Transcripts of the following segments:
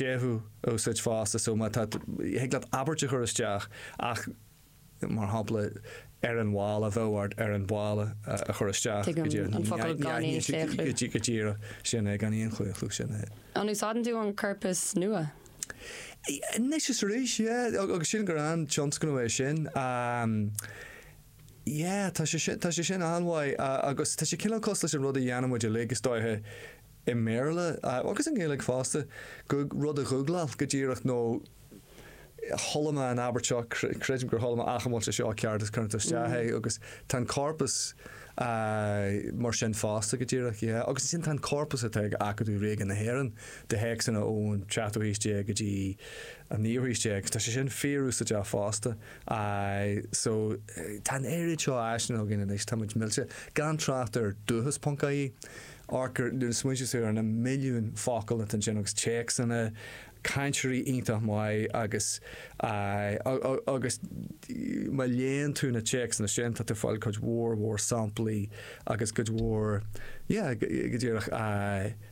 séimhiú a úsáid fosta so má tá thig leat abairt a chur isteach ach mar shampla ar an bhalla bheadh ort ar an balla a chur isteach go díreach an focal gan aon chlaochlú. go díreach sin é gan aon chlaochlú sin é. An úsáideann tú an corpas nua? Anois is arís yeah agus sílim gur an-tionscnamh é sin yeah tá sé sin tá sé sin an-mhaith agus tá sé cineál cosúil leis an rud a dhéanaimid uilig is dóiche i mBéarla agus i nGaeilge fosta, go, rud a ghúgláil go díreach nó chuala mé an abairt seo, creidim gur chuala mé ach an bhfuil sé seo ceart agus cuireann tú isteach é agus tá an corpus mar sin fosta go díreach, yeah. Agus ansin tá an corpus atá ag Acadamh Ríoga na hÉireann de théacsanna ón tseachtú haois déag go dtí an naoú haois déag agus tá sé sin fíorúsáideach fosta. Aye, so tá an oiread seo áiseanna againn anois, táimid millte, gan trácht ar Dúchas ponc ie. Amharc ar na smaointe saor ar na milliúin focal atá ansin agus téacsanna, cainteoirí iontach maith agus agus má léann tú na téacsanna sin tá tú ag fáil cuid mhór mhór samplaí agus cuid mhór yeah go díreach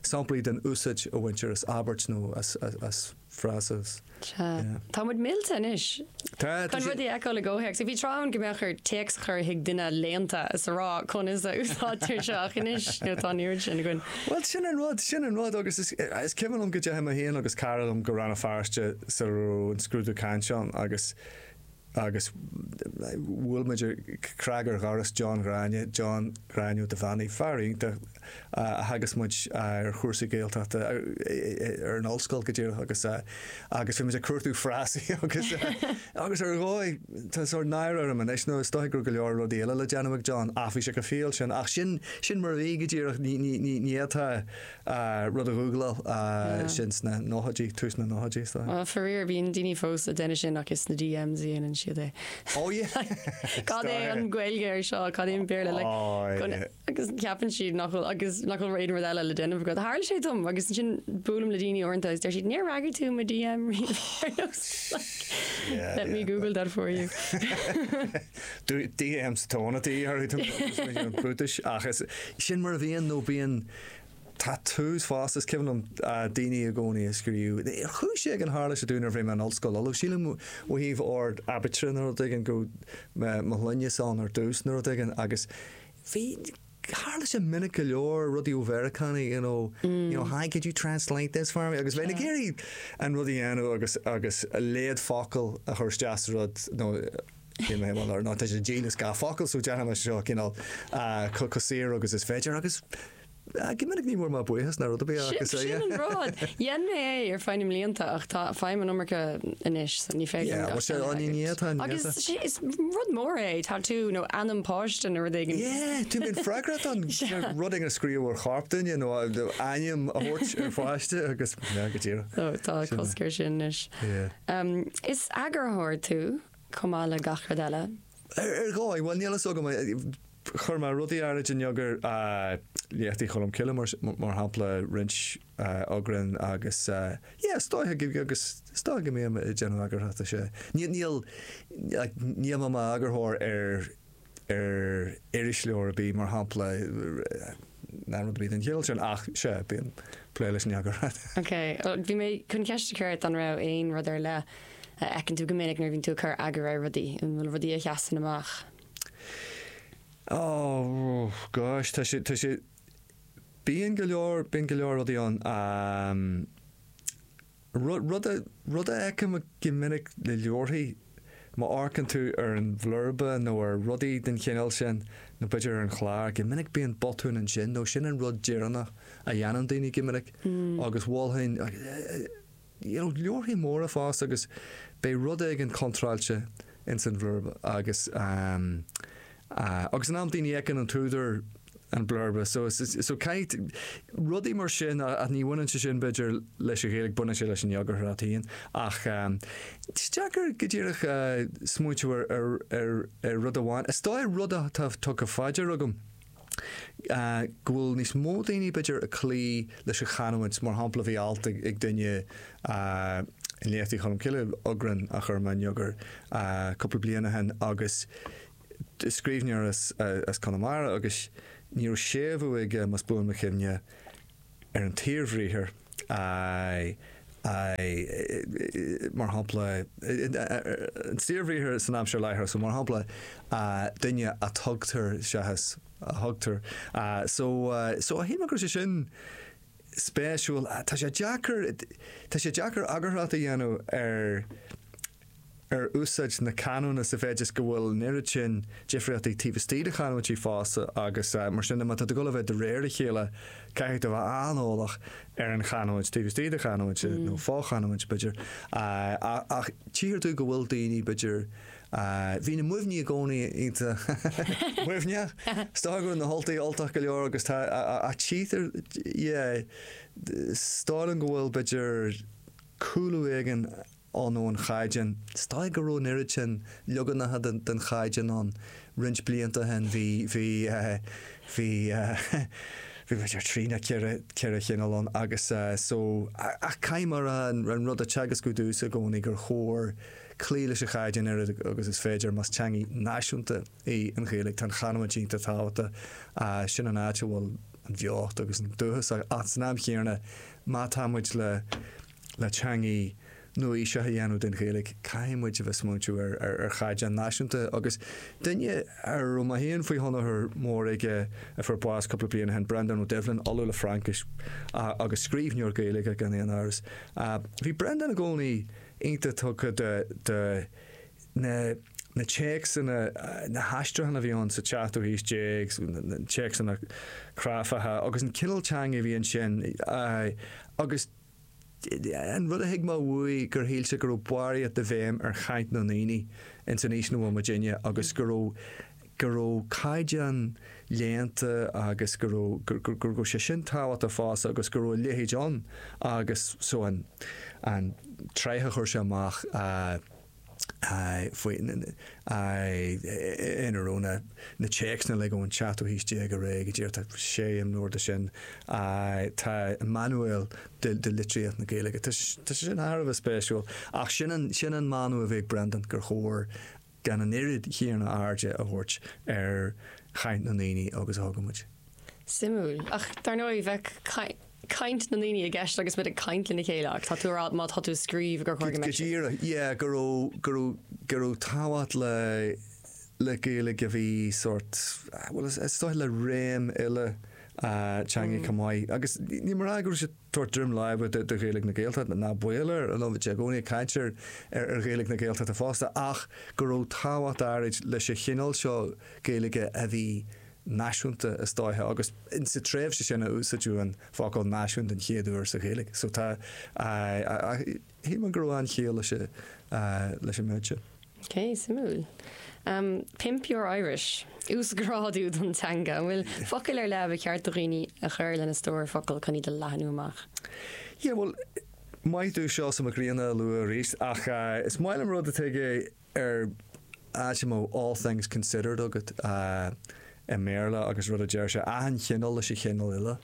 samplaí den úsáid a bhaintear as abairt nó as frása. Sea. Tá muid millte anois. Tá, tá Chun sé- rud a fheiceáil i gcomhthéacs. Bhí tráth ann go mbeadh ort téacs a chur chuig duine léannta is a rá conas a úsáidtear seo ach anois nó tá an oiread sin againn. Bhuel sin an rud, sin an rud agus is, is cuimhin liom go ndeachaigh mé féin agus cara liom go Rann na Feirste sara raibh an scrúdú cainte ann agus agus bhuail muid cnag ar dhoras John Ghráinne, John Ghráinne Ó Duibheannaigh, fear iontach a theagasc muid ar chúrsaí Gaeltachta ar an ollscoil go díreach agus agus bhí muid ag cuartú frásaí agus agus ar dhóigh tá sórt náire orm anois nó is dóigh go raibh go leor rudaí eile le déanamh ag John ach bhí sé chomh fial sin ach sin sin mar a bhí go díreach ní ní ní ní atá rud a ghúgláil sin sna nóchaidí, tús na nóchaidí is dóigh. Well, faraor, bíonn daoine fós á dhéanamh sin ach is sna DMs a dhéanann siad é. Oh yeah! Like, cad é an Gaeilge air seo, cad é an Béarla, like, agus ceapann siad nach bhfuil, agus nach bhfuil aon rud eile le déanamh agat. Tharla sé dom agus ansin buailim le daoine uaireanta agus deir siad, níor fhreagair tú mo DM riamh ar nós, like, let me google that for you. Do DMs tóna taoi orthu, brúitis, ach is, sin mar a bhíonn nó bíonn. Tá tús fás, is cuimhin liom daoine i gcónaí ag scríobh, chuaigh sé ag an tharla sé domh nuair a bhí mé ar an ollscoil, although sílim ó thaobh ord aibítre nó rud éigin go raibh mo shloinne ann ar dtús nó rud éigin agus bhí, tharla sé minic go leor, rudaí ó Mheiriceánaigh you know, you know hi could you translate this for me agus bheinn ag iarraidh an rud a dhéanamh agus agus a léamh focal a chur isteach sa rud nó Níl mé i mbun ár n-áit a dhíol is gach focal so dearfainn leis seo cineál chomh saor agus is féidir agus go minic ní mór ná buíochas ná rud ar bith ach is é. Sin an rud. Dhein mé é ar feadh na mblianta ach tá feidhm an iomarca anois so ní féidir liom gach seans a thabhairt. Agus is rud mór é tatú nó ainm páiste nó rud éigin. Yeah, tá mé freagrach as rud éigin a scríobh ar chorp duine nó ainm a thabhairt ar pháiste agus go díreach. Tá cosc ar sin anois. Is eagarthóir tú. chomh maith le gach rud eile. Ar dhóigh, bhuel, níl fhios agam, chuir mé rudaí áirithe in eagar Léachtaí Cholm Cille mar shampla, roinnt eagrán agus yeah, is dócha go, agus is dócha go mbím ag déanamh eagarthóireachta, sea, níl, níl, like, níl mé mar eagarthóir ar. ar irisleabhar ar bith, mar shampla, ná rud ar bith den chineál sin ach sea, bíonn plé leis an eagarthóireacht. Ok, bhí mé chun ceist a chur ort an raibh aon rud ar leith a fheiceann tú go minic nuair a bhíonn tú ag cur eagair ar rudaí, an bhfuil rudaí a sheasann amach? Oh, gosh, tá sé, tá sé, bíonn go leor, bíonn go leor rudaí ann. Rud a fheicim go minic le leabharthaí, má amharcann tú ar an bhlurba nó ar rudaí den chineál sin, nó b'fhéidir ar an chlár, go minic bíonn botún ansin nó sin an rud deireanach a dhéanann daoine go minic agus i bhfoilseacháin, you know, leabharthaí móra fosta agus beidh rud éigin contráilte ins an bhlurba agus, eh, agus in amanna ní fheiceann an t-údar, an blurb. So so tchí tú rudaí mar sin ach ní bhaineann sé sin b'fhéidir leis an Ghaeilge, baineann sé leis an eagarthóireacht. Ach is deacair go díreach smaointeamh ar ar ar ar rud amháin. Is dóigh rud atá tugtha faoi deara agam go bhfuil níos mó daoine b'fhéidir ag cloí leis an chanúint. Mar shampla bhí alt ag ag duine i Léachtaí Cholm Cille, eagrán a chuir mé in eagar cúpla bliain ó shin agus Is scríbhneoir as Conamara agus ní raibh séimhiú aige más buan mo chuimhne ar an tsaorbhriathar, mar shampla, an saorbhriathar san aimsir láithreach so, mar shampla, duine a tugtar seachas a thugtar. So, so shíl mé go raibh sé sin spéisiúil. Tá sé deacair, tá sé deacair eagarthóireacht a dhéanamh ar. ar úsáid na canúna sa mhéid is go bhfuil an oiread sin difríochtaí taobh istigh de chanúintí fosta agus mar sin de má tá tú ag dul a bheith de réir a chéile caithfidh tú a bheith an-eolach ar an chanúint taobh istigh de chanúint nó fo-chanúint b'fhéidir ach tchíthear tú go bhfuil daoine b'fhéidir bhí na Muimhnigh i gcónaí sách Muimhneach is dócha go raibh na hUltaigh Ultach go leor agus tá ach tchíthear yeah is dóigh liom go bhfuil b'fhéidir cúlú éigin anonn ón chaighdeán. Is dóigh go raibh an oiread sin leaganacha den chaighdeán ann roinnt blianta ó shin. Bhí, bhí eh, bhí eh, bhí b'fhéidir trí nó ceithre, ceithre chineál ann agus eh so, ach caithfidh mé a rá, an rud a theagascfadh dtús i gcónaí gur chóir cloí leis an chaighdeán oiread agus is féidir. Más teangaidh náisiúnta í an Ghaeilge tá an chanúint iontach tábhachta. Eh sin an áit a bhfuil an bheocht agus an dúchas ach san am chéanna má tá muid le le teangaidh nua-aoiseach a dhéanamh den Ghaeilge, caithfidh muid a bheith smaointiú ar chaighdeán náisiúnta. Agus duine a raibh mé féin faoi thionchar mór aige a fuair bás cúpla bliain ó shin, Breandán Ó Doibhlin, Ollamh le Fraincis agus scríbhneoir Gaeilge gan aon amhras, bhí Breandán i gcónaí iontach tugtha do na téacsanna, na haistriúcháin a bhí ann sa tseachtú haois déag, na téacsanna cráifeacha agus an cineál teanga a bhí ansin agus. An rud a thuig mé uaidh gur shíl sé go raibh barraíocht de bhéim ar chaint na ndaoine ins an aois 'na bhfuil muidinne agus go raibh go raibh caighdeán léannta agus go raibh go raibh sé sin tábhachtach fosta agus go raibh a leithéid ann agus so an tráchta a chuir sé amach a ina raibh na téacsanna uilig ón tseachtú haois déag ar aghaidh, go dtí, tá sé imleabhar de sin. Tá an Manuail de Litríocht na Gaeilge, tá sé sin thar a bheith spéisiúil. Ach sin an mana a bhí ag Brendan, gur chóir gan an oiread chéanna airde a thabhairt ar chaint na ndaoine agus a thugaimid. Suimiúil. Ach dar ndóigh bheadh caint. caint na ndaoine i gceist agus muid ag caint lena chéile ach tá tú a' rá má tá tú a' scríobh gur chóir go mbeadh sé. Go díreach, yeah, go raibh, go raibh, go raibh tábhacht le, le Gaeilge a bhí sórt, bhuel is dóigh le réim eile teangaidh chomh maith agus níl mé a' rá go raibh sé tabhairt droim láimhe do Ghaeilge na Gaeltachta, ná baol air, bhíodh sé i gcónaí ag caint ar, ar, ar Ghaeilge na Gaeltachta fosta ach go raibh tábhacht áirid leis an chineál seo Gaeilge a bhí náisiúnta is dóiche agus insa tréimhse sin a úsáideadh an focal náisiún den chéad uair sa Ghaeilge so tá shílim go raibh an-chiall leis an méid sin. Ok, suimiúil. Pimp your Irish. Uasghrádú don teanga. An bhfuil focail ar leith a ba cheart do dhaoine a chur lena stór focal chun iad a leathnú amach? Yeah, bhuel, má thig liom Seosamh Mac Grianna a lua arís ach is maith liom rud atá ag. ar áit a mbeadh all things considered agat i mBéarla agus is é rud a deir sé, achan chineál leis an chineál eile.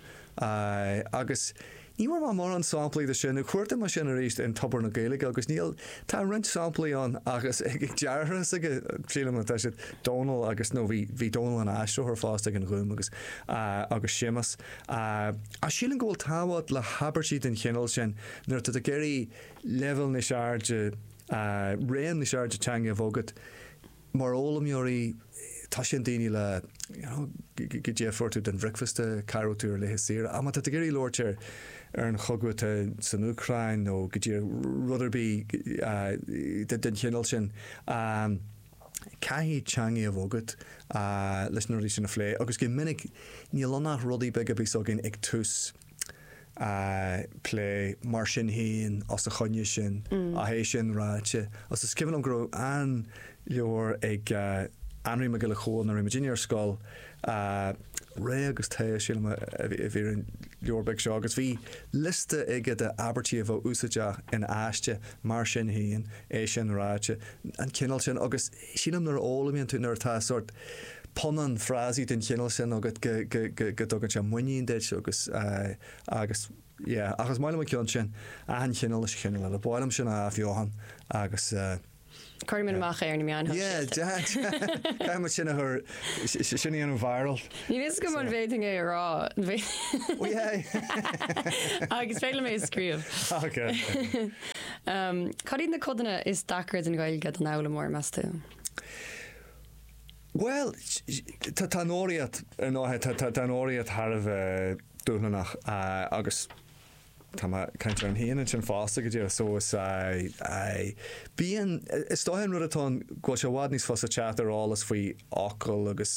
Agus ní bhfuair mé mórán samplaí de sin, nó chuartaigh mé sin aríst in Tobar na Gaeilge agus níl, tá roinnt samplaí ann ach is ag deartháir s'aige, sílim, atá siad, Dónal agus, nó bhí, bhí Dónal ina aistritheoir fosta ag an Ghúm agus, agus Séamus. Ach sílim go bhfuil tábhacht le habairtí den chineál sin nuair atá tú ag iarraidh leibhéal níos airde, a raon níos airde teanga a bheith agat mar fhoghlaimeoirí tá sé fine a rá le daoine, you know, goidé fuair tú don bhricfeasta, cá raibh tú ar laetha saoire ach má tá tú ag iarraidh labhairt ar ar an chogadh atá san Úcráin nó cibé rud ar bith a den chineál sin a caithfidh teanga a bheith agat a leis na rudaí sin a phlé agus go minic níl ann ach rudaí beaga a bíos againn ag tús a abairte. Mar sin féin, os a choinne sin, ach é sin ráite, agus is cuimhin liom go raibh an-leabhar ag Anraí Mac Giolla Chomhaill nuair a bhí muidinne ar scoil, Ré agus Tae, sílim a bhí ar an leabhar beag seo, agus bhí liosta aige de abairtí a bheadh úsáideach in aiste, mar sin féin, é sin ráite, an cineál sin, agus Sílim nuair a fhoghlaimíonn tú, nuair atá sórt punann frásaí den chineál sin agat go, go, go, go dtugann sé muinín duit agus, agus, yeah. Ach is maith liom an ceann sin, achan chineál leis an chineál eile. Ba mhaith liom sin a athbheochan agus. Cuirfidh muid amach é ar na meáin shóisialta. Yeah, caithfidh muid sin a chur. Sin a dhéanamh viral. Níl a fhios agam an bhféadfainn é a rá. Ó yeah. Agus féach ar mé a scríobh. Ok. Cad iad na codanna is deacra den Ghaeilge don fhoghlaimeoir, meas tú? Bhuel, tá an fhoghraíocht ar ndóigh, tá an fhoghraíocht thar a bheith dúshlánach agus tá mé a' caint orm fhéin ansin fosta go díreach so is aye aye bíonn, is dóigh an rud atá ann go bhfuil sé i bhfad níos fusa teacht ar eolas faoi fhocal agus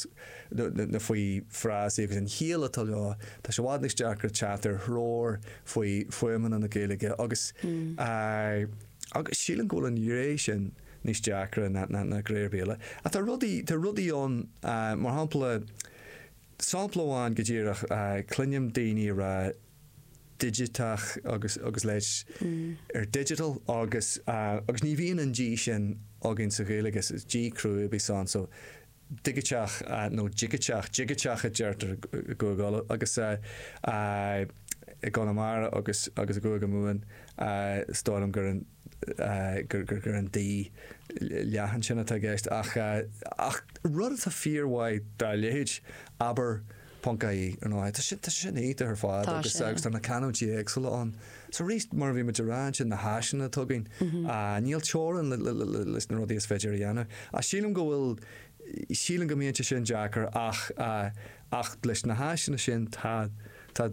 nó faoi frásaí agus an chiall atá leo, tá sé i bhfad níos deacra teacht ar threoir faoi fuaimeanna na Gaeilge agus aye agus sílim go bhfuil an ghné sin níos deacra ná na na gnéithe eile ach tá rudaí tá rudaí ann mar shampla sampla amháin go díreach aye cluinim daoine a' rá digiteach agus agus leithéid digital agus agus ní bhíonn an D sin againn sa Ghaeilig is is D cruaidh a bíos ann so digiteach nó digiteach, digiteach a deirtear i gCúige Uladh agus i gConamara agus agus i gCúige Mumhan is dóigh liom gur an. gur an dóigh leathan sin atá i gceist ach ach rud atá fíor mhaith dá leithéid, abair ponc ie, ar ndóigh. Tá sé tá sé sin iontach ar fad Tá agus sé. agus tá na canúintí éagsúla ann. So aríst mar a bhí muid a rá ansin na háiseanna atá againn ah níl teorainn le le le leis na rudaí is féidir a dhéanamh. Ach sílim go bhfuil sílim go mbíonn sé sin deacair ach ah ach leis na háiseanna sin tá tá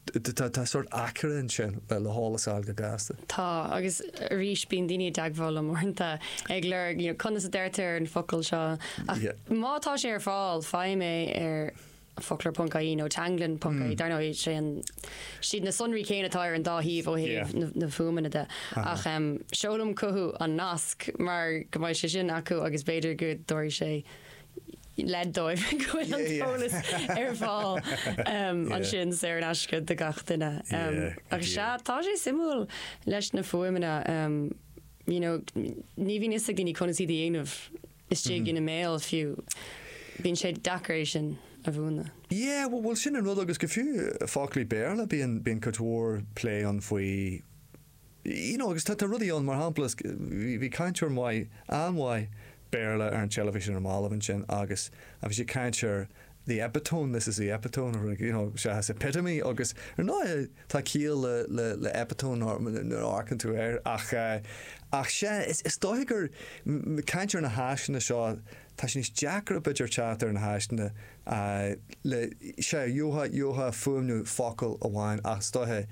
Tá sórt aicearra ansin le heolas a fháil go gasta. Tá, agus arís bíonn daoine i dteagmháil liom uaireanta ag lorg, you know, conas a deirtear an focal seo, ach má tá sé ar fáil, faighim é ar foclóir ponc ie nó teanglann ponc ie, dar ndóigh sé an, siad na sonraí céanna atá ar an dá thaobh ó thaobh na fuaimeanna de, ach em seolaim chucu an nasc mar go mbeidh sé sin acu agus b'fhéidir go dtabharfaidh sé, leid dóibh go bhfuil an t-eolas ar fáil ansin saor in aisce do gach duine. Ach sea, tá sé suimiúil leis na fuaimeanna. You know, ní bhíonn fhios ag daoine conas iad a dhéanamh istigh ina mbéal fiú. Bíonn sé deacair é sin a mhúineadh. Yeah, bhuel sin an rud agus go fiú foclaí Béarla bíonn cuid mhór plé ann faoi You know, agus tá rudaí ann, mar shampla, bhí cainteoir maith, an-mhaith Béarla ar an teilifís ar na mallaibh ansin agus bhí sé ag caint ar the epitome, this is the epitome, you know, seachas epitome agus ar ndóighe tá ciall le epitome nuair a amharcann tú air ach, ach sea, is dóiche gur, caint ar na háiseanna seo, tá sé níos deacra b'fhéidir teacht ar na háiseanna a le sé ó thaobh ó thaobh fuaimniú focal amháin ach is dóiche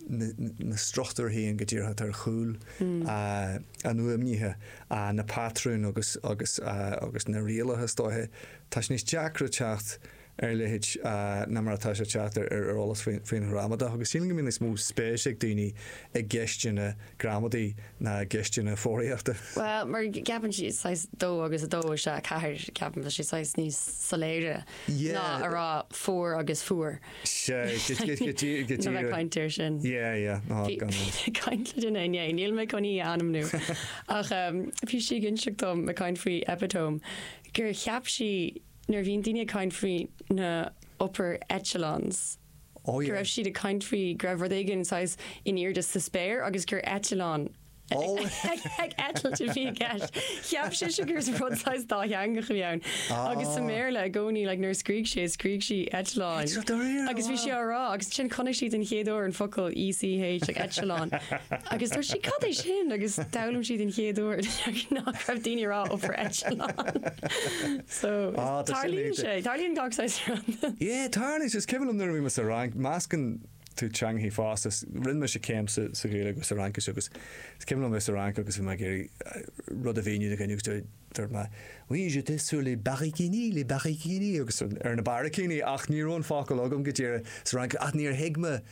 na na struchtúrthaí an go díreach atá ar chúl an fhuaimnithe a na patrúin agus agus agus na rialacha is dóiche tá sé níos deacra teacht ar a leithéid ná mar atá sé teacht ar ar eolas faoin faoin ghramadach agus sílim go mbíonn níos mó spéis ag daoine i gceisteanna gramadaí ná i gceisteanna foghraíochta. Bhuel, mar ceapann siad saghas dó agus a dó is ea a ceathair, ceapaim, tá sé saghas níos soiléire Yeah. ná a rá fuair agus fuar. Sea, go dtí, go dtí, go dtí Ná bheith rud. caint air sin. Yeah, yeah, ná Bhí gan bhí rud. mé ag caint le duine inné, níl mé chun í a ainmniú, ach em, bhí sí ag inseacht dom ag caint faoi epitome gur cheap sí nuair a bhíonn daoine ag caint faoi na upper echelons, go raibh siad ag caint faoi go raibh rud éigin saghas in airde sa spéir agus gur eitleán ag eitilt a bhí i gceist. Cheap sise gur rud saghas dátheangach a bhí ann. Agus sa mBéarla i gcónaí like nuair a scrígh sé, scrígh sí eitleáin. Eitleán, do réir, Agus bhí sí á rá agus ansin chonaic sí den chéad uair an focal ECH like echelon agus dúirt sí cad é sin agus d'fhoghlaim sí den chéad uair nach raibh daoine a rá upper eitleán. So, tarlaíonn sé, tarlaíonn gach saghas rud. Yeah, tarlaíonn sé, is cuimhin liom nuair a bhí mé sa Fhrainc, meascann tú teangachaí fosta, rinne mise céim sa Ghaeilge agus sa Fhraincis agus is cuimhin liom bheith sa Fhrainc agus bhí mé ag iarraidh rud a mhíniú do dhuine agus dúirt mé Oui, j'étais sur les báicíní, les báicíní, agus ar na báicíní, ach ní raibh an focal agam go díreach sa Fhraincis ach níor thuig mé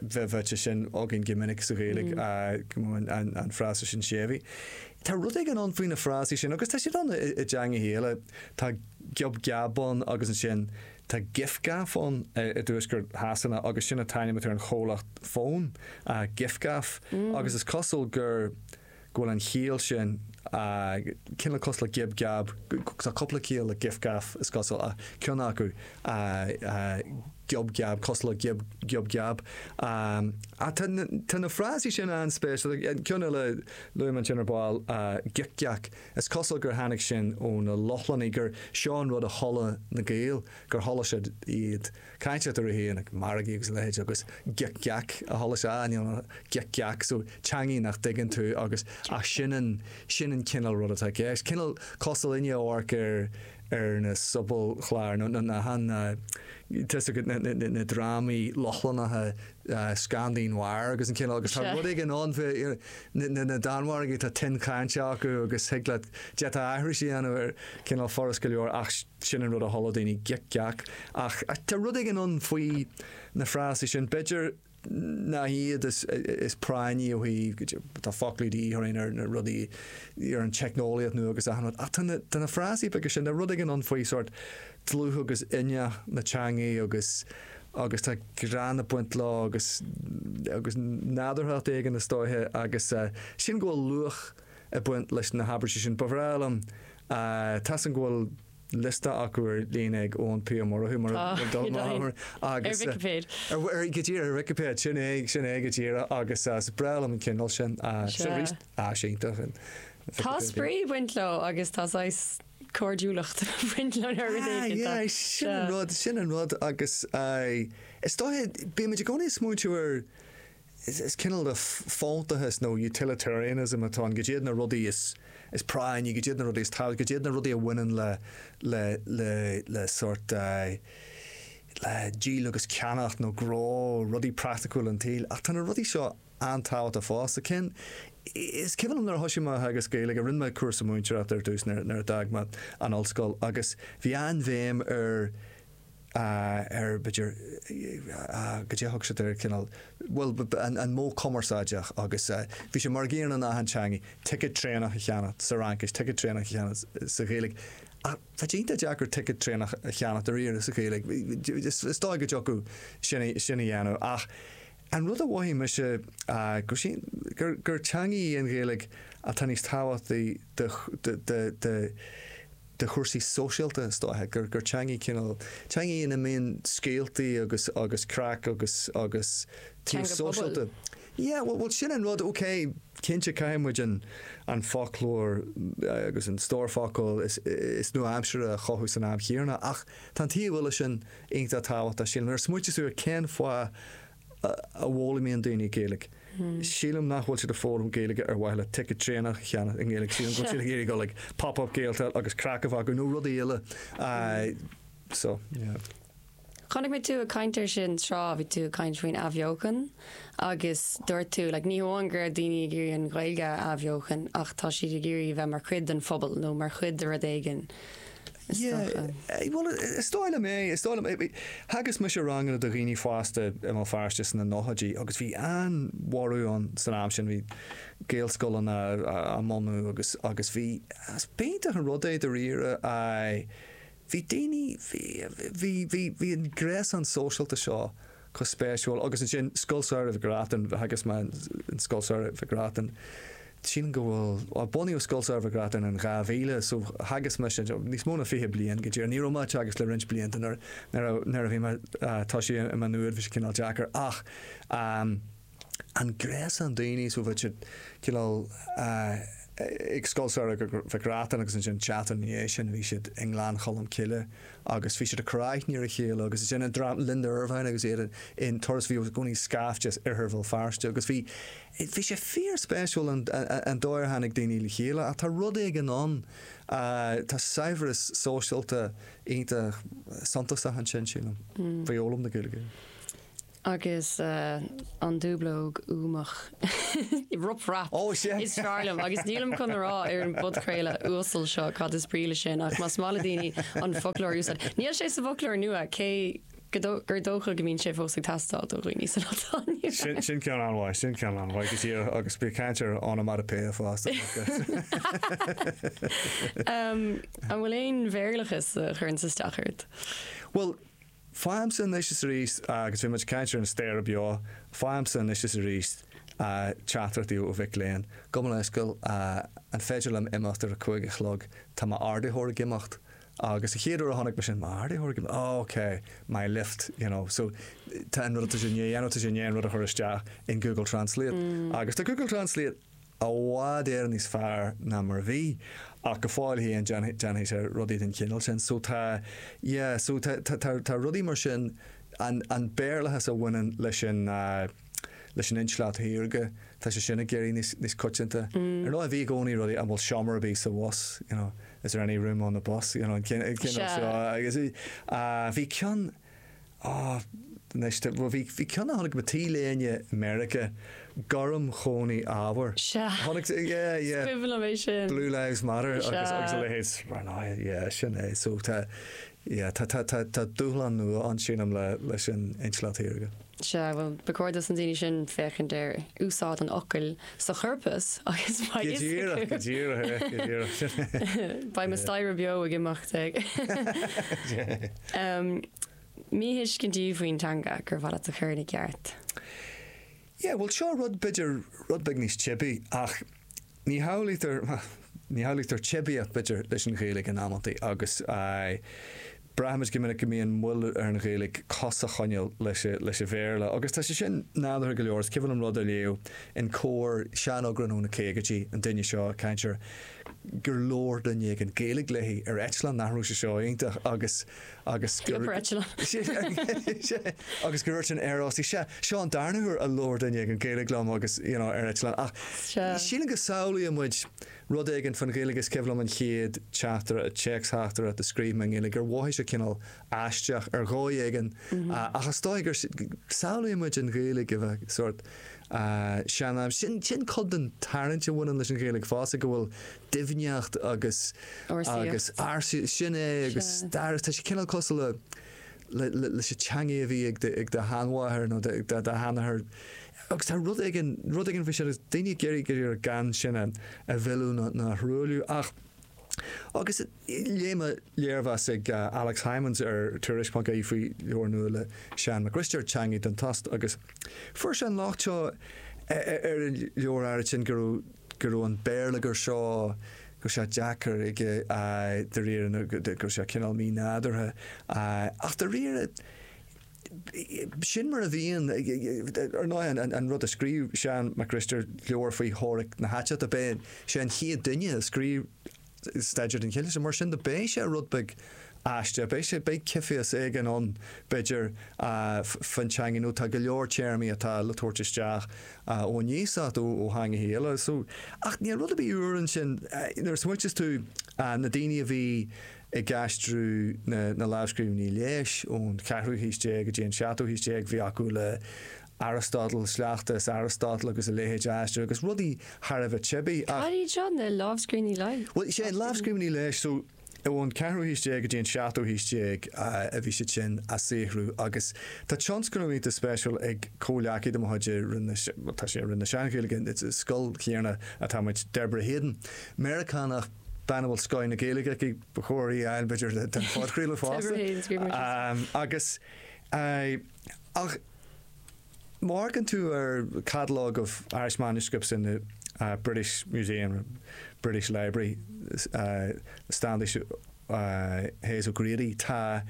bheith bháite sin againn go minic sa Ghaeilge, an frása sin séimhí. Tá rud éigin ann faoi na frásaí sin agus tá siad ann i dteangacha eile. Tá giob geab ann agus ansin tá gif gaff ann i dtuaisceart Shasana agus sin a t-ainm atá ar an chomhlacht fón, gif gaff, agus is cosúil gur. go bhfuil an chiall sin cineál cosúil le giob geab, tá cúpla ciall le gif gaf is cosúil ceann acu giob geab, cosúil le giob giob geab. Ach tá na frásaí sin an-spéisiúil, ceann eile luaigh mé ansin ar ball gic geac, is cosúil gur tháinig sin ó na Lochlannaigh, gur seo an rud a chuala na Gaeil, gur chuala siad iad. ag caint eatarthu féin ag margaí agus a leithéid agus gic geac a chualathas, sin an gic geac so teangaidh nach dtuigeann tú agus ach sin an sin an cineál rud atá i gceist. Cineál cosúil inniu amharc ar ar na sobalchláir nó nó na, tá a fhios agat na na na drámaí Lochlannacha Scandi noir agus an cineál agus tá rud éigin ann faoi na na na Danmhargaigh tá tuin chainte acu agus thig leat d'fhéadfá aithris a dhéanamh ar cineál furast go leor ach Sin an rud a chuala daoine gic geac. Ach tá rud éigin ann faoi na frásaí sin, b'fhéidir nach iad is práinní ó thaobh, cad é, tá foclaí de dhíth orainn ar na rudaí, ar an teicneolaíocht nua agus achan rud, ach tá na, tá na frásaí beaga sin, tá rud éigin ann faoi sórt dlúth agus inneach na teangaidh agus, agus tá greann ag baint leo agus, agus nádúrthacht éigin is dóiche agus sin go bhfuil luach, ag baint leis na habairtí sin. Ba bhreá liom, tá a fhios agam go bhfuil liosta acu ar líne ag Eoin P. Ó Murchú mar a dúirt mé thall agus. Ar Vicipéid. Go díreach ar Vicipéid, sin é, sin é go díreach agus is breá liom an cineál sin sin arís. Sea. Sea, iontach an Vicipéid. Tá spraoi ag baint leo agus tá saghas cairdiúlacht ag baint leo nuair a deir duine éigin iad. Sea, sin an rud, sin an rud agus is dóiche bímid i gcónaí ag smaointiú ar Is cineál de fóntachas nó utilitarianism atá ann, caidé iad na rudaí is práinní, caidé iad na rudaí is tábhachtaí, caidé iad na rudaí a bhaineann le sórt le díol agus ceannacht nó gnó, rudaí praiticiúla an tsaoil. Ach tá na rudaí seo an-tábhachtach fosta. Is cuimhin liom nuair a thoisigh mé ag teagasc Gaeilge, rinne mé cúrsa múinteoireachta ar dtús nuair a d'fhág mé an ollscoil agus bhí an-bhéim ar ar b'fhéidir goidé thug siad ar cineál bhuel an modh cumarsáideach agus bhí sé mar ag iarraidh in achan teangaidh ticead traenach a cheannacht sa Fhraincis, ticead traenach a cheannacht sa Ghaeilge ach tá sé iontach deacair ticead traenach a cheannacht dáiríre sa Ghaeilge. Is dóigh go dtiocfadh sin sin a dhéanamh ach an rud a mhothaigh mise go sin gur teangaidh í an Ghaeilge atá níos tábhachtaí do do do do chúrsaí sóisialta is dóiche, gur gur teanga í cineál, teanga í in a mbíonn scéaltaí agus agus craic agus agus taobh Teanga pobail. sóisialta. Yeah, bhuel bhuel sin an rud, ok, cinnte caithfidh muid an an foclóir agus an stór focal is is nua-aimseartha a chothú san am chéarna ach tá an taobh eile sin iontach tábhachtach sílim. Nuair a smaoitíos tú ar cén fáth a bhfoghlaimíonn daoine Gaeilge. Sílim nach bhfuil siad ag foghlaim Gaeilge ar mhaithe le ticead traenach a cheannach i nGaeilge, sílim go bhfuil siad ag iarraidh dul ag Pop Up Gaeltacht agus craic a bheith acu nó rudaí eile so yeah. Chonaic mé tú ag caint ar sin tráth, bhí tú ag caint faoin athbheochan agus dúirt tú like, ní hamháin gur daoine ag iarraidh an Ghaeilge a athbheochan ach tá siad ag iarraidh bheith mar chuid den phobal nó mar chuid de rud éigin. is dócha. Yeah, bhuel, is dóigh liom é, is dóigh liom. Theagasc mise ranganna do dhaoine fásta i mBéal Feirste sna nóchaidí agus bhí an-bhorradh ann san am sin, bhí Gaelscoileanna á mbunú agus, agus bhí, is b'iontach an rud é dáiríre, aye, bhí daoine, bhí, bhí, bhí, bhí an gréasán sóisialta seo chomh spéisiúil. Agus ansin Scoil Samhraidh Mhic Reachtain, theagasc mé in Scoil Samhraidh Mhic Reachtain, tchím go bhfuil, bhuel bunaíodh Scoil Samhraidh Mhic Reachtain in 2000, so theagasc mise níos mó ná fiche bliain go díreach. Ní raibh mé ag teagasc le roinnt blianta nuair a bhí mé, tá sé i Má Nuad, bhí sé cineál deacair ach. an gréasán daoine seo bhí siad cineál ag Scoil Samhraidh Mhic Reachtain agus ansin seachtain ina dhiaidh sin bhí siad i nGleann Cholm Cille agus bhí siad ag cur aithne ar a chéile agus ansin an dream Linda Ervine agus iad in Turas bhí i gcónaí scaifte as oirthear Bhéal Feirste agus bhí bhí sé fíor spéisiúil an an dóigh ar tháinig daoine le chéile ach tá rud éigin ann tá saibhreas sóisialta iontach suntasach ansin sílim faoi fhoghlaim na Gaeilge. Agus an dúblóg uamach. Rup rap. Oh shit. Is fearr liom agus nílim chun a rá ar an bpodchraoladh uasal seo cad is brí le sin ach más maith le daoine an foclóir a úsáid, níl sé sa bhfoclóir nua cé gur dócha go mbíonn sé fós ag teastáil do dhaoine san Altáin. Sin ceann an-mhaith, sin ceann an-mhaith go deo agus bí ag caint ar onomatopoeia fosta. An bhfuil aon Bhéarlachas a chuireann isteach ort? Bhuel, Faighimse anois is arís, agus bhí muid ag caint ar an staighre beo, faighimse anois is arís teachtaireachtaí ó mhic léinn. Gabh mo leithscéal, an féidir liom imeacht ar a cúig a chlog? Tá m'Ardaitheoir ag imeacht. Agus an chéad uair a chonaic mé sin, m'Ardaitheoir ag imeacht? Oh ok, my lift, you know. So tá an rud atá sé i ndiaidh a dhéanamh, tá sé i ndiaidh an rud a chur isteach in Google Translate. Agus tá Google Translate I bhfad Éireann níos fearr ná mar a bhí, ach go fóill féin déanfaidh, déanfaidh sé rudaí den chineál sin. So tá, yeah, so tá, tá, tá, tá rudaí mar sin, an, an Béarlachas a bhaineann leis an, leis an intleacht shaorga, tá sé sin ag éirí níos, níos coitianta. Ar ndóigh, bhí i gcónaí rudaí, an bhfuil seomra ar bith sa bhus, you know, is there any room on the bus, you know, an cineál, an cineál seo, agus, bhí ceann, Ah, anois de, bhuel, bhí, bhí ceann a chonaic mé, T-léine i Meiriceá, gorm chónaí ábhar. Sea. Chonaic, yeah, yeah. Is cuimhin liom é sin. Blue Lives Matter Sea. agus, agus a leithéid, mar ná, yeah, sin é. So tá, yeah, tá, tá, tá, tá dúshlán nua ann sílim le, leis an Intleacht Shaorga. Sea, bhuel, ba chóir dos na daoine sin féachaint ar úsáid an fhocail sa chorpas agus beidh fhios acu. Go díreach, go díreach, go díreach. Beidh mo staighre beo ag imeacht ag míthuiscintí faoin teanga gur mhaith leat a chur ina gceart. Yeah, bhuel, seo rud b'fhéidir rud beag níos teibí ach ní shamhlaítear, ní shamhlaítear teibíocht b'fhéidir leis an Ghaeilge in amantaí agus Braithimid go minic go mbíonn moill ar an Ghaeilge cos a choinneáil leis an Bhéarla, agus tá sé sin nádúrtha go leor. Is cuimhin liom rud a léamh in Comhar, seaneagrán ó na caogaidí, an duine seo, cainteoir, gur labhair duine éigin Gaeilge léi ar eitleán, nach raibh sé seo iontach, agus agus gur agus gur dúirt an aeróstach, sea, seo an darna huair a labhair duine éigin Gaeilge liom agus, you know, ar eitleán. Ach sílim go samhlaíonn muid Rud éigin faoin Ghaeilge is cuimhin liom an chéad teachtaire, téacs-theachtaireacht a scríobh mé i nGaeilge gur mhothaigh sé cineál aisteach ar dhóigh éigin ach is dóigh go samhlaíonn muid an Ghaeilge a bheith sórt sean, am. Sin sin cuid den tarraingt a bhaineann leis an Ghaeilge fosta go bhfuil doimhneacht agus agus ársaíocht, sin é agus stair, tá sé cineál cosúil le leis a' teangaidh a bhí ag do, ag do shean-mháthair nó do, ag do shean-athair agus tá rud éigin, rud éigin faoi sin agus daoine ag iarraidh, ag iarraidh gan sin a, a mhilleadh ná, ná a thruailliú ach, agus léigh mé léirmheas ag Alex Hijmans ar Tuairisc pointe ie faoi leabhar nua le Seán Mac Risteaird, Teangaidh don Tost agus fuair sé an locht seo ar an leabhar áirid sin go raibh, go raibh an béarlagair seo go raibh sé deacair aige dáiríre go raibh sé cineál mínádúrtha ach dáiríre sin mar a bhíonn ar ndóigh an rud a scríobh Seán Mac Risteaird leabhar faoi theoiric na haiteachta b'eisean an chéad duine a scríobh staidéar den chineál sin. Mar sin de beidh sé rud beag aisteach, beidh sé, beidh ciotaíos éigin ann b'fhéidir faoin teangain nó tá go leor téarmaí atá le tabhairt isteach ón iasacht ó theangacha eile. So, ach níl rud ar bith úr ansin. Nuair a smaoitíos tú na daoine a bhí ag aistriú na lámhscríbhinní leighis ón cheathrú haois déag go dtí an seachtú haois déag bhí acu le, Aristotle, sleachta as Aristotle agus a leithéid a aistriú agus rudaí thar a bheith teibí ach. Cad iad seo, na lámhscríbhinní leighis? Bhuel, sea, na lámhscríbhinní leighis so ón ceathrú haois déag go dtí an seachtú haois déag a bhí siad sin á saothrú agus tá tionscnamh iontach spéisiúil ag comhleacaí de mo chuid i Roinn na, bhuel tá sé i Roinn na Sean-Ghaeilge, i scoil chéanna atá muid, Deborah Hayden, Meiriceánach, bean a bhfuil scoth na Gaeilge aici, ba chóir í a fháil b'fhéidir don phodchraoladh fosta. Deborah Hayden, scríobh mé síos. Agus, aye, ach. Má amharcann tú ar Catalogue of Irish Manuscripts in the British Museum, British Library, Standish Hayes O'Grady, tá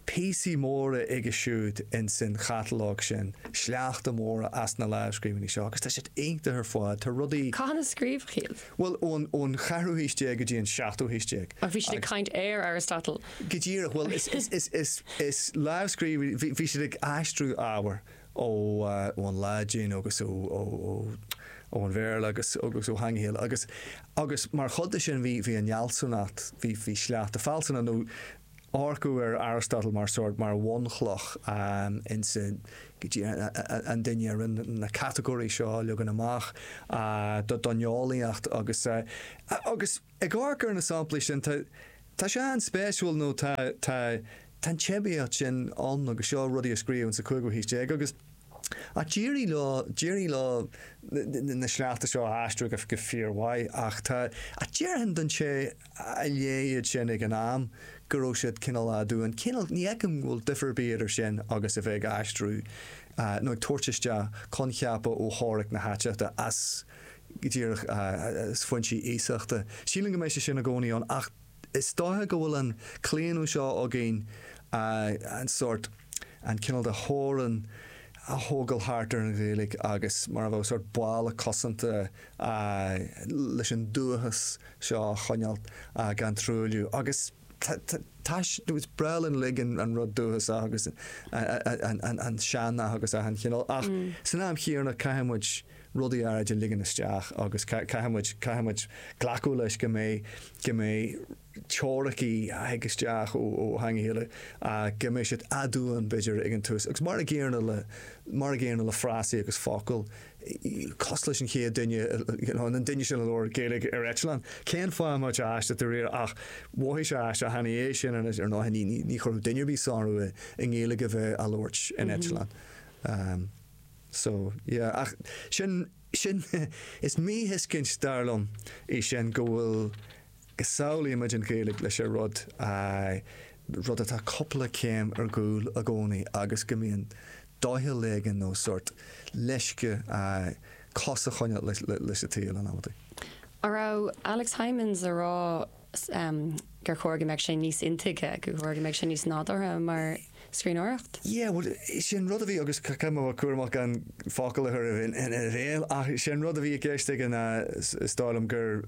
píosaí móra aige siúd ins an chatalóg sin, sleachta móra as na lámhscríbhinní seo, agus tá siad iontach ar fad. Tá rudaí. Cathain a scríobhadh iad? Bhuel, ón, ón cheathrú haois déag go dtí an seachtú haois déag. Ach bhí siad ag Agus. caint ar Aristotle. Go díreach, bhuel is, is, is, is, is lámhscríbhinn, bhí, bhí siad ag aistriú ábhair ó, ón Laidin agus ó, ó, ó, ón Bhéarla agus, agus ó theangacha eile agus, agus mar chuid de sin bhí, bhí an fhealsúnacht, bhí, bhí sleachta fealsúnachta nó, amharcadh ar Aristotle mar sórt, mar bhunchloch ins an duine a rinne na catagóirí seo a leagan amach don eolaíocht agus agus ag amharc ar na samplaí sin tá tá sé an-spéisiúil nó tá tá an teibíocht sin ann agus seo rudaí a scríobhadh ins an chúigiú haois déag agus Ach d'éirigh leo, d'éirigh leo na sleachta seo a aistriú go fíor mhaith ach tá, ach déarfainn don té a léigh iad sin ag an am go raibh siad cineál aduain, cineál, ní fheicim go bhfuil difear ar bith idir sin agus a bheith ag aistriú nó ag tabhairt isteach coincheapa ó theoiric na haiteachta as, go díreach, as foinsí iasachta. Sílim go mbeidh sé sin i gcónaí ann ach. Is dóiche go bhfuil an claonadh seo againn an sórt, an cineál de theorann a thógáil thart ar an Ghaeilge agus mar a bheadh sórt balla cosanta leis an dúchas seo a choinneáil gan truailliú. Agus tá, is breá linn uilig an rud dúchasach agus an sean-nath agus achan chineál ach san am chéanna caithfidh muid, rudaí áirid a ligean isteach agus caithfimid, caithfimid glacadh leis go mbeidh, go mbeidh teoiricí a thig isteach ó, ó theangacha eile ach go mbeidh siad aduain b'fhéidir ag an tús agus mar an gcéanna le, mar an gcéanna le frásaí agus focail, cosúil leis an chéad duine, you know, an duine sin a labhair Gaeilge ar eitleán, cén fáth a mbeadh sé aisteach de réir ach mhothaigh sé aisteach cheana é sin anois ar ndóigh ní, ní, ní chuirfeadh duine ar bith sonrú i nGaeilge a bheith á labhairt in eitleán. So, yeah. Ach sin, sin, is míthuiscint dar liom í sin go bhfuil, go samhlaímid an Ghaeilge leis a' rud, aye, rud atá cupla céim ar gcúl i gcónaí agus go mbíonn doicheall éigin nó sórt leisce, aye, cos a choinneáil leis, leis a' tsaol in amantaí. An raibh Alex Hijmans a' rá gur chóir go mbeadh sé níos intuigthe, gur chóir go mbeadh sé níos nádúrtha mar scríbhneoireacht? Yeah, bhuel, sin rud a bhí agus caithfidh mé a bheith cúramach gan focail a chur ina bhéal ach sin rud a bhí i gceist aige ná is dóigh liom gur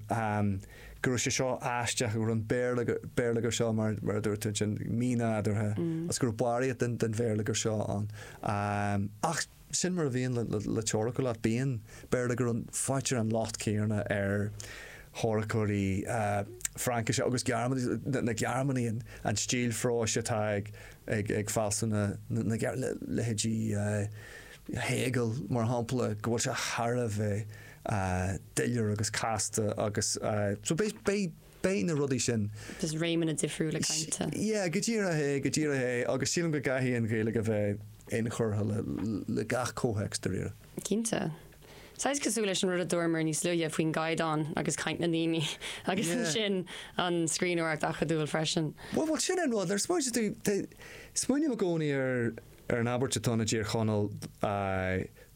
go raibh sé seo aisteach, go raibh an béarlagair seo, mar a dúirt tú ansin, mínádúrtha agus go raibh barraíocht den bhéarlagair seo ann. Ach. Sin mar a bhíonn le teoiric go leor. Bíonn. B'fhéidir go bhfaightear an locht céanna ar theoiriceoirí Fraincise agus Gearmáinise, na Gearmánaigh, an stíl phróis atá ag fealsúna na Gearmáine, leithéidí Hegel mar shampla, go bhfuil sé thar a bheith doiléir agus casta agus so beidh. Beidh na rudaí sin. Just réimeanna difriúla cainte. Yeah, go díreach é, go díreach é agus sílim go gcaithfidh an Ghaeilge a bheith inchurtha le gach comhthéacs, dáiríre. Cinnte. Saghas cosúil leis an rud a dúramar níos luaithe faoin gcaighdeán agus caint na ndaoine agus ansin an scríbhneoireacht acadúil freisin. Bhuel, bhuel, sin é an rud. Nuair a smaoiníonn tú, smaoiním i gcónaí ar an abairt atá i dTír Chonaill,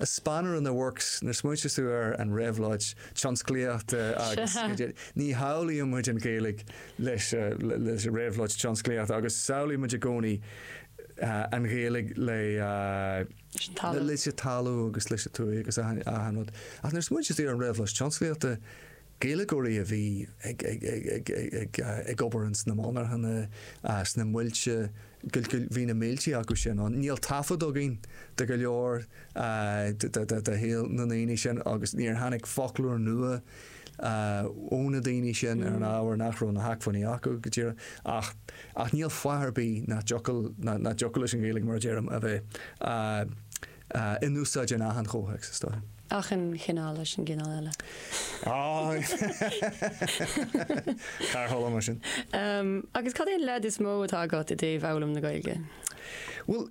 a spanner in the works nuair a smaointíos tú ar an réabhlóid tionsclaíochta agus ní shamhlaíonn muid an Ghaeilge leis leis an réabhlóid tionsclaíochta agus samhlaíonn muid i gcónaí an Ghaeilge le leis an talamh agus leis an tuath agus achan rud ach nuair a smaointíos tú ar an réabhlóid tionsclaíochta Gaeilgeoirí a bhí ag obair ins na monarchana, sna muilte, bhí na mílte acu sin ann. Níl taifead againn de go leor de shaol na ndaoine sin agus níor tháinig foclóir nua ó na daoine sin ar an ábhar nach raibh na hacmhainní acu go díreach. Ach níl fáth ar bith nach dtiocfadh leis an Ghaeilge, mar a deirim, a bheith. in úsáid in achan chomhthéacs, is dóigh. achan chineál réimse cineál eile. Thar chuile mar sin. Agus cad é an leid is mó atá agat i dtaobh fhoghlaim na Gaeilge? Bhuel,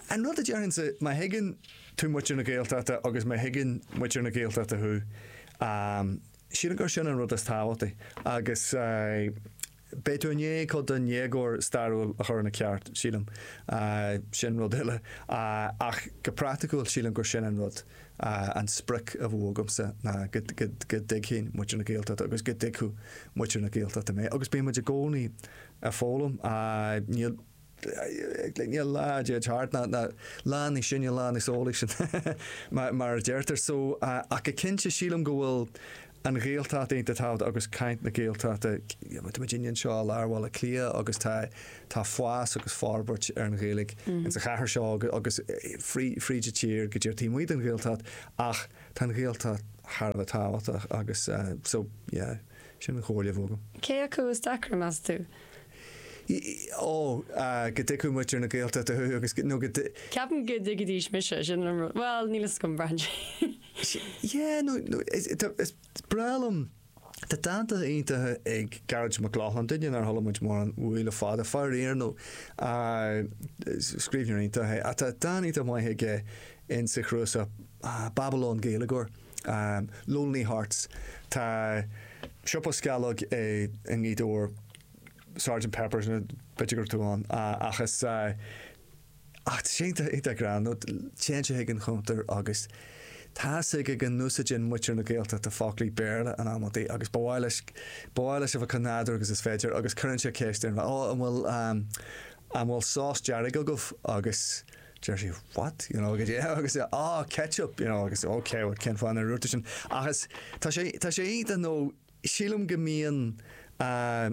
an rud a déarfainnse, má thuigeann tú muintir na Gaeltachta agus má thuigeann muintir na Gaeltachta thú, sílim gur sin an rud is tábhachtaí. Agus. Beidh tú i ndiaidh cuid den éagóir stairiúil a chur ina ceart, sílim. Sin rud eile. Ach go praiticiúil, sílim gur sin an rud, an sprioc a bheadh agamsa ná go dtuigfinn muintir na Gaeltachta agus go dtuigfeadh muintir na Gaeltachta mé. Agus bíonn muid i gcónaí ag foghlaim. Níl. aon lá dá dtéid thart, nach lá níos sine, lá níos eolaí, sin mar a deirtear. So, ach go cinnte, sílim go bhfuil an Ghaeltacht iontach tábhachtach agus caint na Gaeltachta, táimid anseo i lár Bhaile Átha Cliath agus tá tá fás agus forbairt ar an Ghaeilge in sa chathair seo agus fríd an tír go léir taobh amuigh den Ghaeltacht ach tá an Ghaeltacht thar a bheith tábhachtach agus so, yeah, sin an chomhairle a bheadh agam. Cé acu is deacra, meas tú? Ó, go dtuigfeadh muintir na Gaeltachta thú agus go, nó go dtuigfeadh. Ceapaim go dtuigfidís mise, sin an rud. Bhuel, níl fhios agam, braitheann sé. Yeah, nó, nó, tá, is breá liom, tá dánta iontacha ag Gearóid Mac Lochlainn, duine nár chuala muid mórán uaidh le fada, faraor, nó, scríbhneoir iontach é, ach tá dán iontach maith aige insa chnuasach, ah, Babylon Gaeilgeoir. Lonely Hearts Tá siopa sceallóg i nGaoth Dobhair, Sergeant Pepper's b'fhéidir go raibh tú ann ach tá sé iontach greannmhar nó téann sé chuig an chuntar agus tá a fhios aige go n-úsáideann muintir na Gaeltachta foclaí Béarla in amanntaí agus ba mhaith leis ba mhaith leis a bheith chomh nádúrtha agus is féidir agus cuireann sé ceist ar an bhfear an bhfuil an bhfuil sás dearg agaibh agus Deir sí what? you know, agus é ah ketchup, you know, agus ok bhuel cén fáth nár úirt tú sin ach is tá sé tá sé iontach nó sílim go mbíonn eh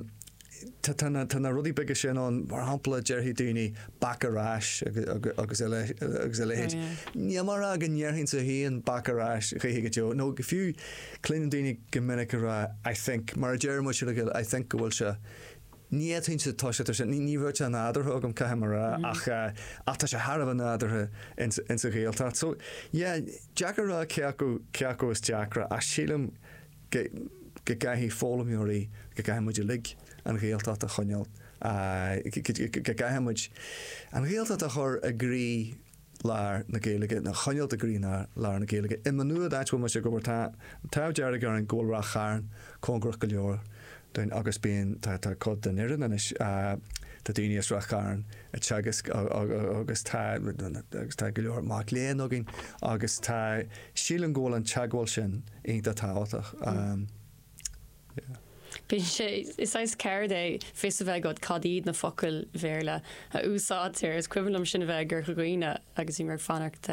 tá tá na tá na rudaí beaga sin ann mar shampla déarfaidh daoine back ar ais agus agus a le agus a leithéid ní mheasaim go ndéarfainnse féin back ar ais choíche go deo nó fiú cluinim daoine go minic ag rá I think mar a deir muid as Gaeilge I think go bhfuil sé Ní fhéadfainnse, tá sé, tá sé, ní raibh sé nádúrtha agam, caithfidh mé a rá, ach ach tá sé thar a bheith nádúrtha ins ins an Ghaeltacht. So, yeah, deacair a rá cé acu cé acu is deacra ach sílim go go gcaithfidh foghlaimeoirí, go gcaithfidh muid uilig an Ghaeltacht a choinneáil, go gcaithfidh muid an Ghaeltacht a chur i gcroí, lár na Gaeilge, a choinneáilt i gcroílár na Gaeilge. I Má Nuad, áit a bhfuil mise ag obair, tá an t-ádh dearg orainn go bhfuil Ráth Chairn cóngarach go leor dúinn agus bíonn, tá, tá cuid den fhoireann anois, tá daoine as Ráth Chairn ag teagasc agus tá, agus tá go leor mac léinn againn agus tá, sílim go bhfuil an teagmháil sin iontach tábhachtach. Bíonn sé, is saghas ceird é fios a bheith agat cad iad na focail Bhéarla a úsáidtear. Is cuimhin liom sinn a bheith i gCorca Dhuibhne agus bhí mé ag fanacht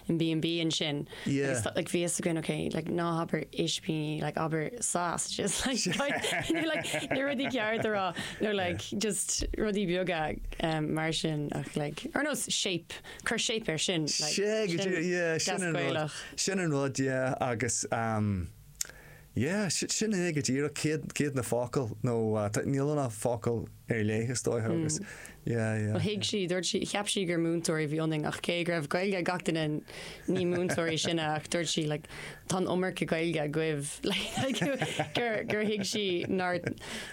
in B&B ansin agus like bhí fhios againn ok like ná habair ispíní like abair sausages like nó like na rudaí ceart a rá nó like just rudaí beaga mar sin ach like ar nós shape cur shape ar sin like sin yeah sin ar nós sin ar nós yeah agus um Yeah, sin é go díreach, céard, céard iad na focail, nó níl, na focail ar leith is dócha agus yeah, yeah. Ó thuig sí, dúirt sí, cheap sí gur múinteoirí a bhí ionainn ach cé go raibh Gaeilge ag gach duine ní múinteoirí sinne ach dúirt sí like tá an iomarca Gaeilge agaibh like gur, gur thuig sí nár,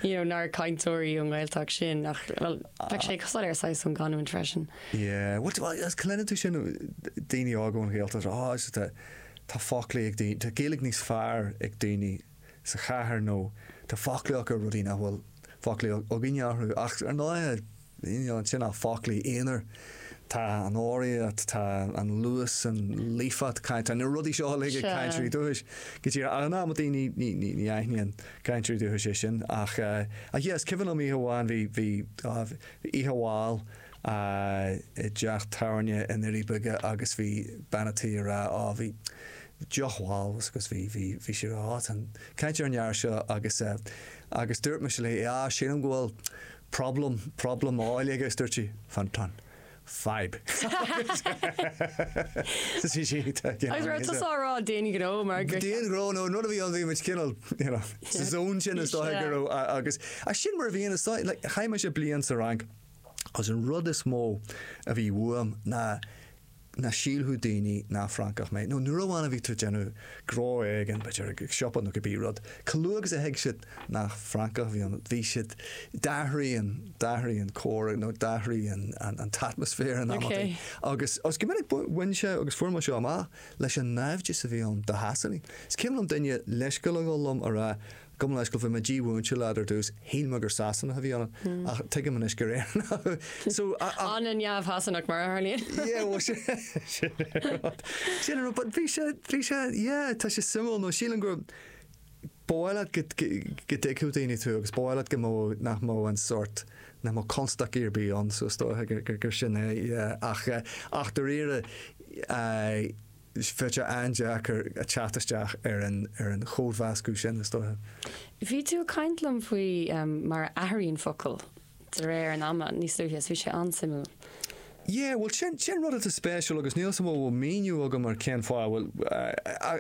you know, nár cainteoirí ón nGaeltacht sinn ach bhuel bheadh sé cosúil ar shaghas ón gcanúint freisin. Yeah, bhuel, is cluineann tú sin daoine óga ón Ghaeltacht, oh, tá foclaí ag daoine, tá Gaeilge níos fearr ag daoine sa chathair nó tá foclaíocht ar rudaí nach bhfuil foclaíocht againne orthu ach ar ndóighe, you know, níl ansin ach foclaí aonair, tá an ordaíocht, tá an luas, an líofacht cainte, tá na rudaí seo uilig ag cainteoirí dúchais go díreach ach in amanntaí ní, ní, ní, ní, ní aithníonn cainteoirí dúchais é sin ach, ach yeah, is cuimhin liom oíche amháin bhí, bhí, oh, bhí oíche mhall, a i dteach tábhairne i nDoirí Beaga agus bhí bean a' tí a rá ó bhí deoch mhall bhfios agat bhí bhí bhí sí a rá ó tá an chaint ar an fhear seo agus eh agus dúirt mise léi á sílim go bhfuil problem problem óil aige agus dúirt sí fan tá an fadhb so sí sí tá you know Agus raibh is tusa á rá d'aon ghnó mar gur d'aon ghnó nó an rud a bhí ann bhí muid cineál you know sa zone sin is dóigh go raibh a- agus ach sin mar a bhíonn is dóigh like chaith mise bliain sa Fhrainc agus an rud is mó a bhí uaim ná ná go sílfeadh daoine gur Francach mé, nó nuair amháin a bhí tú ag déanamh gnó éigin, b'fhéidir i siopa nó cibé rud. Chomh luath agus a thuig siad nach Francach a bhí ann, bhí siad, d'athraigh an, d'athraigh an comhrá nó d'athraigh an, an, an t-atmaisféar in amanntaí. Agus, agus go minic bhain sé, agus fuair mé seo amach, leis an naimhdeas a bhí ann do Shasanaigh. Is cuimhin liom duine leithscéal a ghabháil liom a rá, Gabh mo leithscéal, bhí mé dímhúinte leat ar dtús, shíl mé gur Sasanach a bhí ionat, ach tuigim anois gur Éireannach thú. So, ach. An-neamh-Shasanach mar a tharlaíonn. Yeah, bhuel sin, sin é an rud. Sin an rud, but bhí sé, bhí sé, yeah, tá sé suimiúil nó sílim gur, ba mhaith leat go, go, go dtuigfeadh daoine tú agus ba mhaith leat go mbeadh, nach mbeadh an sórt, nach mbeadh constaicí ar bith ann so is dóiche gur, gur, gur sin é, yeah, ach, ach dáiríre, eh, Bheadh sé an-deacair teacht isteach ar an chódmheascadh sin, is dóiche. Bhí tú ag caint liom faoi mar a athraíonn focail de réir an ama níos luaithe is bhí sé an-suimiúil. Yeah, bhuel sin, sin rud atá spéisiúil agus níl fhios agam an mó míniú agam ar cén fáth, bhuel,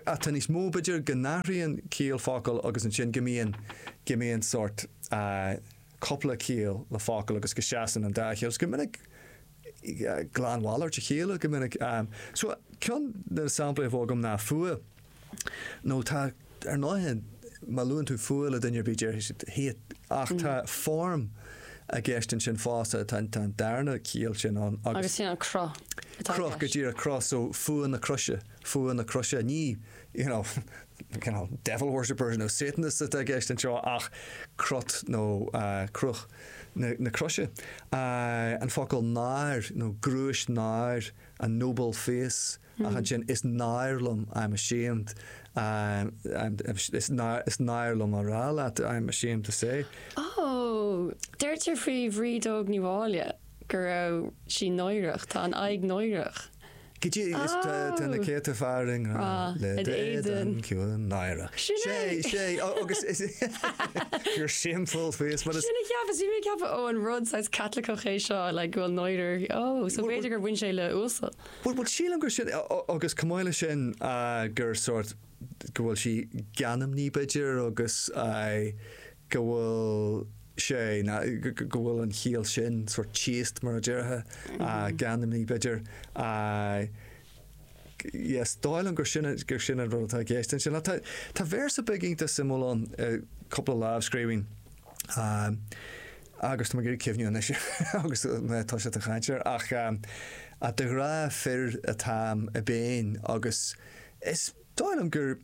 atá níos mó b'fhéidir go n-athraíonn ciall focail agus ansin go mbíonn, go mbíonn sórt cúpla ciall le focail agus go seasann an dá chiall agus go minic glanmhalairt a chéile go minic. So ceann de na samplaí a bheadh agam ná fuath. Nó tá, ar ndóighe, má luann tú fuath le duine ar bith déarfaidh siad hate ach tá form i gceist ansin fosta, tá an darna ciall sin ann agus. Agus sin an cruth atá i gceist. Cruth, go díreach, cruth. So fuath na croise, fuath na croise. Ní you know devil worshippers nó satanists atá i gceist anseo ach crot nó cruth. na Croise, an focal náir, nó gnúis náir, a noble face, ach ansin is náir liom, I am ashamed, is náir liom a rá leat, I am ashamed to say. Ó, dúirtear faoi Bhríd Óg Ní Mháille go raibh sí náireach, tá a haghaidh náireach. Aici is tá na céadta fear i ngrá le d'éadan ciúin náireach. Sin é! Sé ó agus is your shameful face mar. Sin a cheapas, bhí mé ag ceapadh ó an rud saghas Caitliceach é seo like go bhfuil náire uirthi ó so b'fhéidir gur bhain sé le uasal. Bhuel bhuel sílim gur sin agus chomh maith le sin gur sort go bhfuil sí geanmnaí b'fhéidir agus go bhfuil sé, na, go bhfuil an chiall sin sórt chaste mar a déarfá, ah, geanmnaí b'fhéidir, ah, yes, is dóigh liom gur sin, gur sin an rud atá i gceist ansin. Ach tá, tá véarsa beag iontach suimiúil ann i gcúpla lámhscríbhinn, ah, agus tá mé ag iarraidh cuimhniú anois agus mé ag toiseacht a chaint air, ach ah, de ghrá fir atáim i bpéin agus is dóigh liom gur,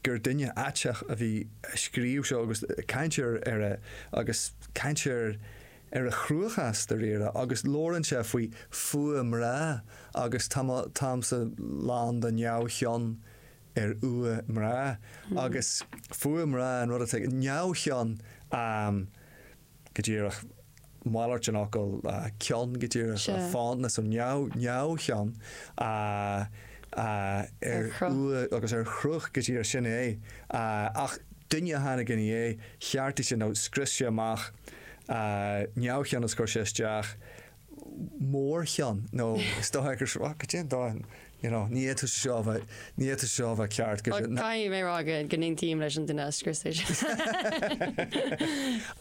gur duine aiteach a bhí ag scríobh seo agus ag caint ar a, agus ag caint ar, ar a chruachás dáiríre agus labhrann sé faoi fuath mná agus tá mo, táimse lán do neamhchion ar fhuath mná agus fuath mná an rud atá, neamhchion, go díreach, malairt an fhocail cion, go díreach, Sea. fondness, nó neamh, neamhchion Ar ar chruth. fhuath agus ar chruth, go díreach, sin é. Ach duine a tháinig ina dhiaidh, cheartaigh sé, ó scrios sé amach neamhchion is chuir sé isteach. mórchion nó is dóigh gur seo, go dtí dóigh, you know, ní fhéadfadh sé seo a bheith, ní fhéadfadh sé seo a bheith ceart go. Well, caithfidh mé a rá go go n-aontaím leis an duine a scrios é seo.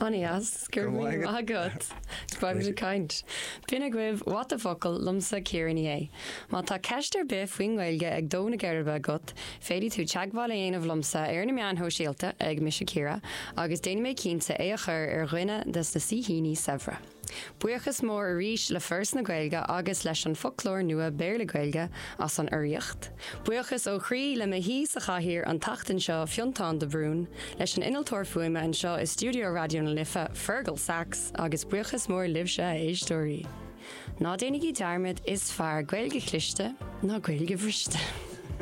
Anois, go raibh míle maith agat. Go raibh muid ag caint. B'in agaibh What the Focal liomsa Ciara Ní É. Má tá ceist ar bith faoin nGaeilge ag dó na geirbe agat, féadfaidh tú teagmháil a dhéanamh liomsa ar na meáin shóisialta ag Mise Ciara agus déanfaidh mé cinnte é a chur ar dhuine des na saoithíní saibhre. Buíochas mór arís le Foras na Gaeilge agus leis an Foclóir Nua Béarla-Gaeilge as an urraíocht. Buíochas ó chroí le mo shaoi sa chathaoir an tseachtain seo, Fionntán de Brún, leis an innealtóir fuaime anseo i stiúideo Raidió na Life, Fergal Sachs, agus buíochas mór libhse, a éisteoirí. Ná déanaigí dearmad, is fearr Gaeilge chliste ná Gaeilge bhriste!